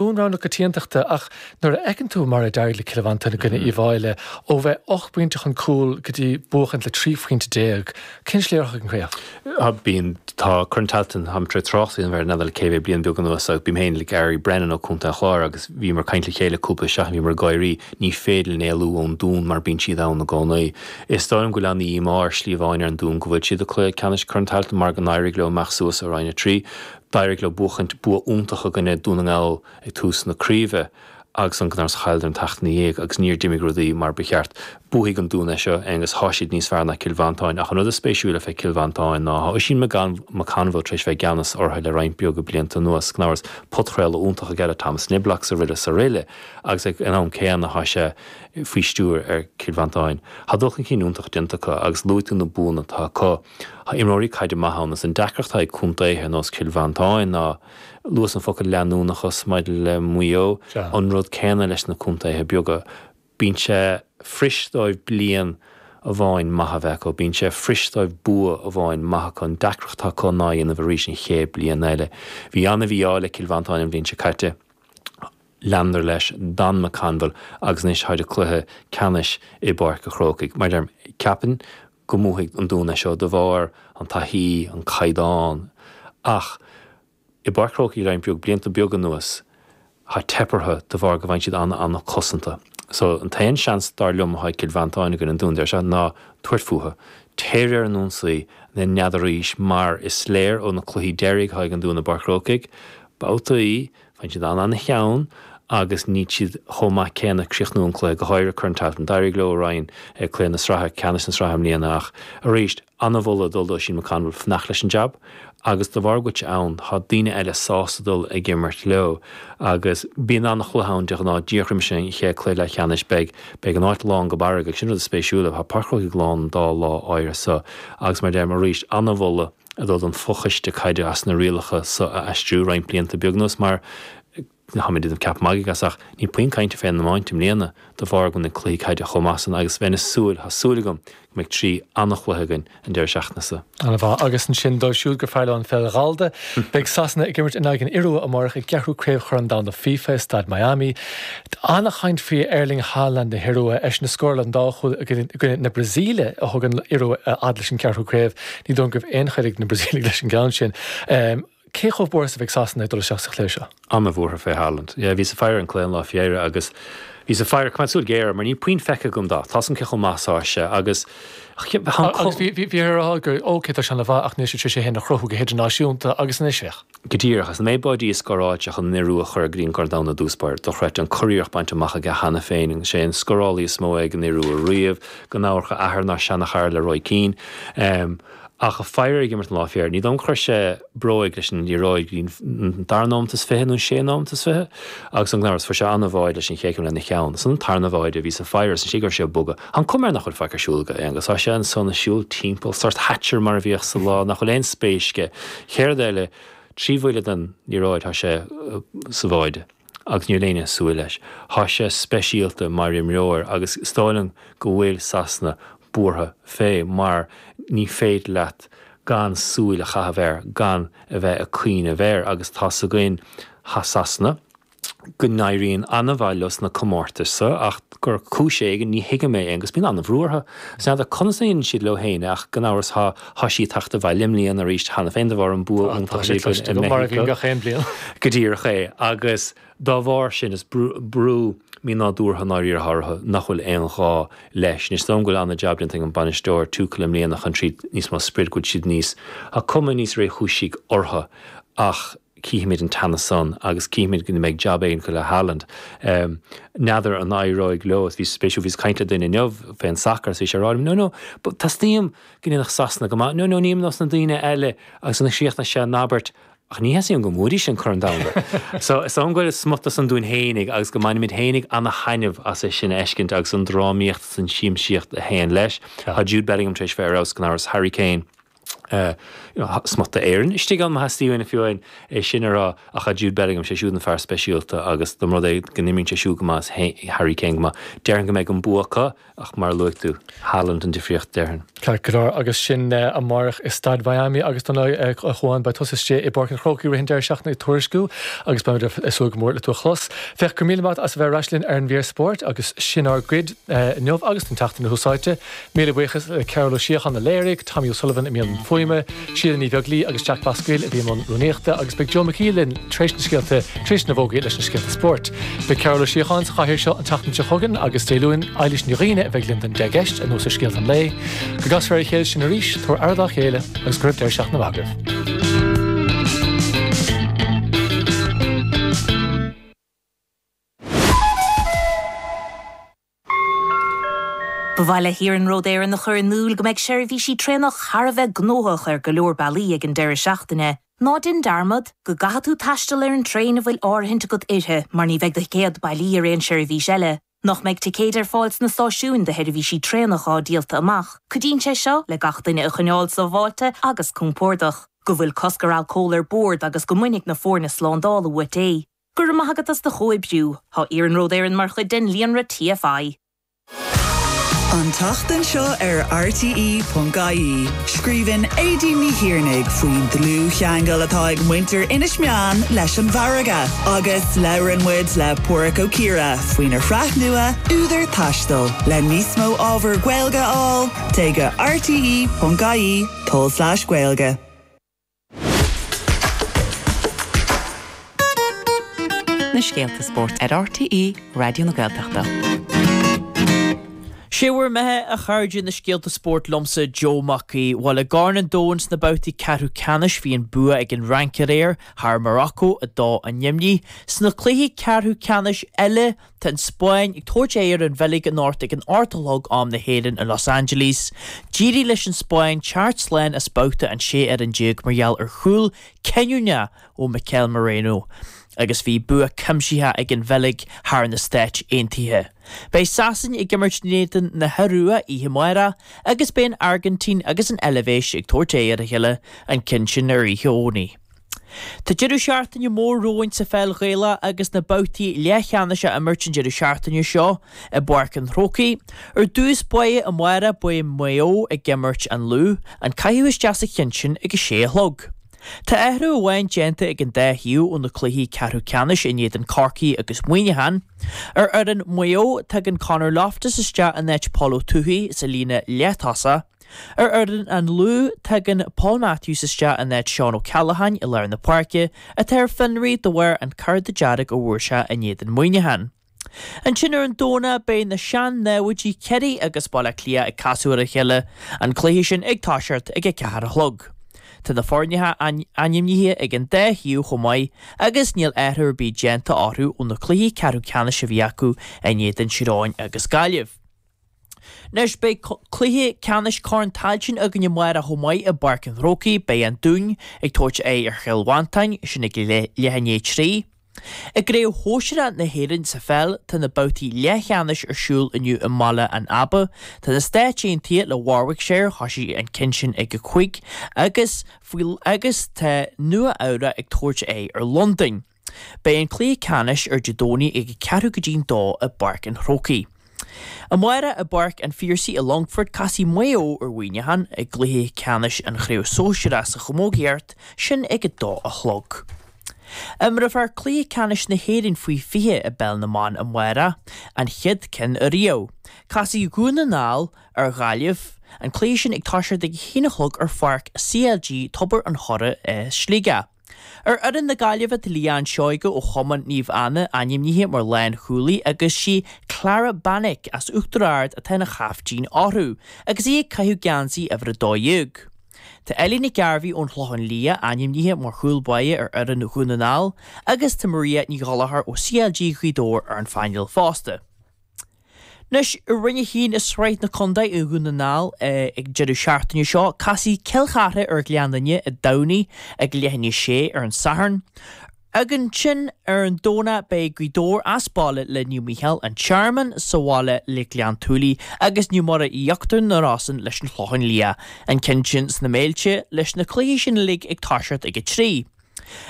Dún rogha na coitiantachta ach nuair a fheiceann tú mar a d'éirigh le Cill Mhantáin i gcoinne Uíbh Fhailí, ó bheith ocht bpointe chun cúil go dtí buachaint le trí phointe déag, cén sléacht ag an gcraobh? Bíonn, tá Corn Tailteann tá mé tréis tráchtaireacht a dhéanamh air le cúpla bliain beag anuas agus bím féin le Gary Brennan ó Contae an Chláir agus bhíomar ag caint le chéile cúpla seachtain bhíomar ag gáirí, ní féidir linn éalú ón Dún mar bíonn siad ann i gcónaí. Is dóigh liom go bhfuil ana mhí-ádh ar shlí amháin ar an Dún go bhfuil siad i gcluiche ceannais Chorn Tailteann mar go n-éirigh leo imeacht suas ó Roinn a trí. D'éirigh leo buachaint bua iontach i gcoinne Dún na nGall ag tús na craoibhe agus gan amhras chailleadar an tseachtain ina dhiaidh agus níor d'imigh rudaí mar ba cheart. Buafaidh an Dún é seo agus thá siad níos fearr ná Cill Mhantáin ach an rud is spéisiúla fé Chill Mhantáin ná thá Oisín McConville tar éis bheith i gceannas ortha le roinnt beaga blianta anuas gan amhras podchraoladh iontach aige le Thomas Niblock srl srl agus ag an am céanna thá sé faoi stiúir ar Cill Mhantáin. Thá dul chun cinn iontach déanta acu agus luaigh tú na buanna atá acu. Tá imreoirí caide maith ann. Is an deacracht atá ag contaetha ar nós Chill Mhantáin ná luas an focal leanúnachas maidir le Maigh Eo. An rud céanna leis na contaetha beaga. Bíonn sé fuirist dóibh bliain amháin maith a bheith acu, bíonn sé fuirist dóibh bua amháin maith acu, an deacracht atá acu ná a dhéanamh arís an chéad bliain eile. Bhí ana mhí-ádh le Cill Mhantáin an bhliain seo caite. Leanadar leis, d'fhan McConville agus anois táid i gcluiche ceannais i bPáirc an Chrócaigh. Mar a deirim, ceapaim go mbuafaidh an Dún é seo de bharr an taithí, an caighdeán ach i bPáirc Chrócaigh roinnt beag blianta beag anuas tá teipthe orthu de bharr go bhfaigheann siad ana ana cosanta. So an t-aon seans dar liom atá ag Cill Mhantáin i gcoinne an Dún Dé Sathairn ná tabhairt fúthu. Téir ar an ionsaí ina n-aghaidh arís mar is léir ó na cluichí deiridh atá ag an Dún i bPáirc Chrócaigh, babhtaí, Bíonn siad ana ana theann agus níl siad chomh maith céanna ag críochnú an cluiche, go háirithe Corn Tailteann. D'éirigh leo araon i gcluiche na sraithe ceannais na sraithe i mbliana ach, arís, ana mholadh ag dul do Oisín McConville fanacht leis an jab agus de bharr go bhfuil sé ann tá daoine eile sásta dul ag imirt leo agus bíonn ana chluiche ann de ghnáth díreach roimis an chéad cluiche leathcheannais beidh beidh an áit lán go barra agus sin rud is spéisiúla tá Páirc Chrócaigh lán an dá lá áirithe so agus mar a deirim arís ana mholadh ag dul don fho-choiste caide as na rialacha so a aistriú roinnt blianta beag anuas mar tá mé ag déanamh ceap magaidh as ach níl puinn cainte fé an iomáint i mbliana de bharr go bhfuil na cluichí caide chomh maith san agus bheinn ag súil, tá súil agam, go mbeidh trí an-chluiche againn an deireadh seachtaine so. Ana mhaith. Agus ansin dóibh siúd gur fearr leo an pheil ghallda, beidh Sasana ag imirt in aghaidh an Iorua amáireach i gceathrú craobh Chorn Domhanda FIFA i Staid Miami. Tá ana chaint faoi Erling Haaland na hIorua, eisean a scóráil an dá chúl i gcoinne na Brasaíle a thug an Iorua a fhad leis an gceathrú craobh. Ní dóigh go raibh aon choinne ag na Brasaíligh leis an gceann sin. Cé chomh buartha is a bheidh Sasana ag dul isteach sa chluiche seo? An-bhuartha fé Haaland. Yeah, bhíos ag faire an chluiche an lá faoi dheireadh agus bhíos ag faire, coimeád súil géar air mar níl puinn feicthe agam de. Tá's agam cé chomh maith atá sé agus Agus bhíothas á rá go, OK, tá sé an-mhaith ach níl sé tréis é féin a chruthú go hidirnáisiúnta agus anois féach. Go díreach, is an méid báidí a scóráil sé chun an Iorua a chur go dtí an gCorn Domhanda i dtús báire, dochreidte, an curiarracht bainte amach aige cheana féin, is é an scórálaí is mó é ag an Iorua riamh, gan amhras a athair ina sheanachara le Roy Keane. Ach ag faire air ag imirt an lá fé dheireadh, ní dóigh liom gur chuir sé bróig leis an liathróid go dtí an dara nóimeat is fiche nó an séú nóimeat is fiche agus ansan gan amhras, fuair sé an-bháide leis an chéad céim lena cheann. Is ansan an tarna báide, bhíos ag faire air, is ar éigean go raibh sé ag bogadh. Tá an chuma air nach bhfuil faic ar siúl aige, Aonghus. Tá sé ansan ag siúl timpeall, sórt Thatcher mar a bhíodh sa lá, nach bhfuil aon spéis aige. Chéad rud eile, trí bhuille den liathróid tá sé sa bháide agus níl éinne ag súil leis. Tá sé speisialta mar imreoir agus is dóigh liom go bhfuil Sasana buartha fé mar ní féidir leat gan súil a chaitheamh air, gan a bheith ag cuimhneamh air agus tá's againn Sasana, go n-éiríonn an-mhaith leo sna comórtais so ach ar chúis éigin, ní thuigim é, Aonghus, bíonn an-bhrú orthu. Is n'fheadar conas a dhéanann siad leo féin é ach gan amhras tá tá sí ag teacht abhaile i mbliana arís cheana féin de bharr an bua iontach a bhí acu i Meicsiceo. Tá, tá sé cloiste agam, mar a bhíonn gach aon bliain. Go díreach é. Agus dá bharr sin is brú brú mínádúrtha i ndáiríre atá orthu nach bhfuil aon ghá leis. Anois, is dóigh liom go bhfuil an-jab déanta ag an bhainisteoir, Tuchel, i mbliana chun tríd níos mó sprid, go bhfuil siad níos, tá cuma níos réchúisí orthu ach, cífimid an teannas san agus cífimid go mbeidh jab éigin acu le Haaland. N'fheadar an éireoidh leo. Bhí sé spéisiúil, bhíos ag caint le duine inniu fé an sacar is bhí sé ag rá liom, no no, teastaíonn uaim go ndéanfadh Sasana go maith, no no, nílim ar nós na daoine eile agus ansan chríochnaigh sé an abairt, ach ní theastaíonn uaim go mbuafaidís an Corn Domhanda. So, is dóigh go bhfuil smut de san dúinn fhéinig agus go mbainimid fhéinig ana thaitneamh as é sin a fheiscint agus an drámaíocht is an siamsaíocht a théann leis. Tá Jude Bellingham tar éis bheith ar fheabhas gan amhras, Harry Kane, smut d'Éirinn istigh ann, má theastaíonn uainne fiú é sin a rá, ach a Jude Bellingham, sé siúd an fear speisialta agus dá mba rud é go n-imríonn sé siúd go maith is Harry Kane go maith, déarfainn go mbeidh an bua acu ach mar a luaigh tú, Haaland an difríocht déarfainn. Ceart go leor agus sin amárach i Staid Mhiami agus don lá a chuaigh ann beidh tusa istigh i bPáirc an Chrócaigh i rith an deireadh seachtaine ag tuairisciú agus beimid ag súil go mór le tú a chlos. Féach gura míle maith as a bheith ar ais linn ar an mír spóirt agus sin ár gcuid inniu agus don tseachtain a lucht éisteachta. Míle buíochas le Cathal Ó Síocháin a léirigh, Tommy O'Sullivan i mbun fuaime, Síle Ní Bheaglaoi agus Jack Basquill a bhí i mbun rúnaíochta agus beidh Joe McHugh linn tar éis na scéalta tar éis na bhfógraí leis na scéalta spóirt. Beidh Cathal Ó Síocháin sa chathaoir seo an tseachtain seo chugainn agus Dé Luain, Éilís Ní Dhuibhne a bheidh linn don Deich gCeist anuas ar scéalta an lae. Go gcasfar ar a chéile sin arís, tabhair aire dá chéile agus go raibh deireadh seachtaine mhaith agaibh. Ba mhaith le hIarnród Éireann a chur in iúl go mbeidh seirbhísí traenach thar a bheith gnóthach ar go leor bealaí ag an deireadh seachtaine. Ná déan dearmad go gcaithfidh tú taisteal ar an traein a bhfuil áirithint agat uirthi mar ní bheidh do thicéad bailí ar aon seirbhís eile. Nach mbeidh ticéid ar fáil sna stáisiúin do sheirbhísí traenach atá díolta amach, cuidíonn sé seo le gach duine a choinneáil sábháilte agus compordach. Go bhfuil cosc ar alcól ar bord agus go mbainfidh na foirne slándála uait é. Go raibh maith agat as do chomhoibriú. Tá Iarnród Éireann mar chuid den líonra TFI. An tseachtain seo ar RTÉ.ie, scríobhann Aedín Ní Thiarnaigh faoin dlúthcheangal atá ag muintir Inis Meáin leis an bhfarraige agus labhrann muid le Páraic Ó Ciardha faoina shraith nua Údar Taistil. Le níos mó ábhar Gaeilge a fháil, téigh go rte.ie/gaeilge. na scéalta spóirt ar RTÉ Raidió na Gaeltachta. Sé bhur mbeatha a chairde na scéalta spóirt liomsa Joe Mac Aoidh. Bhuel i gCorn an Domhain sna babhtaí ceathrú ceannais bhí an bua ag an Fhrainc aréir thar Morocco, 2, 0. Sna cluichí ceathrú ceannais eile Tá an Spáinn ag tabhairt aghaidh ar an Bheilg anocht ag a hocht a chlog am na hÉireann i Los Angeles. D'éirigh leis an Spáinn teacht slán as babhta an 16 mar gheall ar chúl cinniúnach ó Mikel Merino agus bhí bua cuimsithe ag an Bheilg thar na Stáit Aontaithe. Beidh Sasana ag imirt in éadan na hIorua oíche amárach agus beidh an Airgintín agus an Eilbhéis ag tabhairt aghaidh ar a chéile an ceann sin ar oíche Dhomhnaigh. Tá deireadh seachtaine mór romhainn sa pheil Ghaelach agus na babhtaí leathcheannais á n-imirt an deireadh seachtaine seo i bPáirc an Chrócaigh. Ar dtús, amárach, beidh Maigh Eo ag imirt an Lú, an caitheamh isteach sa cheann sin ag a sé a chlog. Tá athrú amháin déanta ag an dá thaobh ó na cluichí ceathrú ceannais in éadan Chorcaí agus Muineachán. Ar fhoireann Mhaigh Eo, tagann Conor Loftus isteach in áit Paul Towey sa líne leath-tosaigh. Ar fhoireann an Lú, tagann Paul Matthews isteach in áit Seán O'Callaghan i lár na páirce, atá ar fionraí de bharr an cárta dearg a fuair sé in éadan Muineachán. Ansin ar an Domhnach beidh na sean-námhaidí Ciarraí agus Baile Átha Cliath ag casadh ar a chéile, an cluiche sin ag toiseacht ag a ceathair a chlog. Tá na foirne ainmnithe ag an dá thaobh chomh maith agus níl athrú ar bith déanta orthu ó na cluichí ceathrú ceannais a bhí acu in éadan Tír Eoghain agus Gaillimh. Anois beidh cluiche ceannais Corn Tailteann againn amárach chomh maith i bPáirc an Chrócaigh. Beidh An Dún ag tabhairt aghaidh ar Chill Mhantáin, sin ag leath i ndiaidh a trí. I gCraobh Shóisear A na hÉireann sa pheil tá na babhtaí leathcheannais ar siúl inniu i mBaile an Aba. Tá na Stáit Aontaithe thuas le Warwickshire, thosaigh an ceann sin ag a cúig, agus agus tá Nua Eabhrac ag tabhairt aghaidh ar Londain. Beidh an cluiche ceannais ar Dé Domhnaigh ag a ceathrú go dtí'n dó i bPáirc an Chrócaigh. Amárach i bPáirc an Phiarsaigh i Longfort casfaidh Maigh Eo ar Mhuineachán i gcluiche ceannais an chraobh sóisearach sa chamógaíocht, sin ag a dó a chlog. Imreofar cluiche ceannais na hÉireann faoi 20 i bpeil na mban amárach, an chéad cheann ariamh. Casfaidh Dhún na nGall ar Ghaillimh, an cluiche sin ag toiseacht ag a haon a chlog ar pháirc CLG Tobar an Choire i Sligeach. Ar fhoireann na Gaillimhe tá Leanne Seoige ó Chumann Naomh Anna ainmnithe mar lánchúlaí agus sí Clara Beanick as Uachtar Ard atá ina caiftín orthu agus í ag caitheamh geansaí uimhir 12. Tá Ellie Nic Gairbheith ón Chlochán Liath ainmnithe mar chúl báire ar fhoireann Dhún na nGall agus tá Maria Ní Ghallachair ó CLG Ghaoth Dobhair ar an phainéal fosta. Anois i Roinn a hAon i Sraith na Condae i nDún na nGall ag deireadh seachtaine seo casfaidh Cill Chartha ar Ghleann Fhinne i dTamhnaigh ag leath i ndiaidh a sé ar an Satharn. Agus ansin ar an Domhnach beidh Gaoth Dobhair as baile le Naomh Mícheál an Tearmann sa bhaile le Gleann tSúilí agus Naomh Muire Íochtar na Rosann leis an Chlochán Liath. An cionn sin sna Méilte leis na cluichí sin uilig ag toiseacht ag a trí.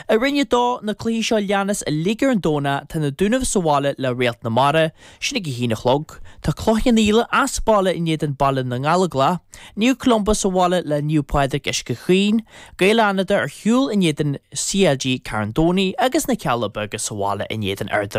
I Roinn 2, na cluichí seo leanas uilig ar an Domhnach, tá na Dúnaibh sa bhaile le Réalt na Mara, sin ag a haon a chlog. Tá Cloich Cheann Fhaola as baile in éadan Baile na nGallóglach. Naomh Columba sa bhaile le Naomh Pádraig Uisce Chaoin. Gaeil Fhánada ar shiúl in éadan CLG Carn Domhnaigh agus na Cealla Beaga sa bhaile in éadan Ard an Rátha.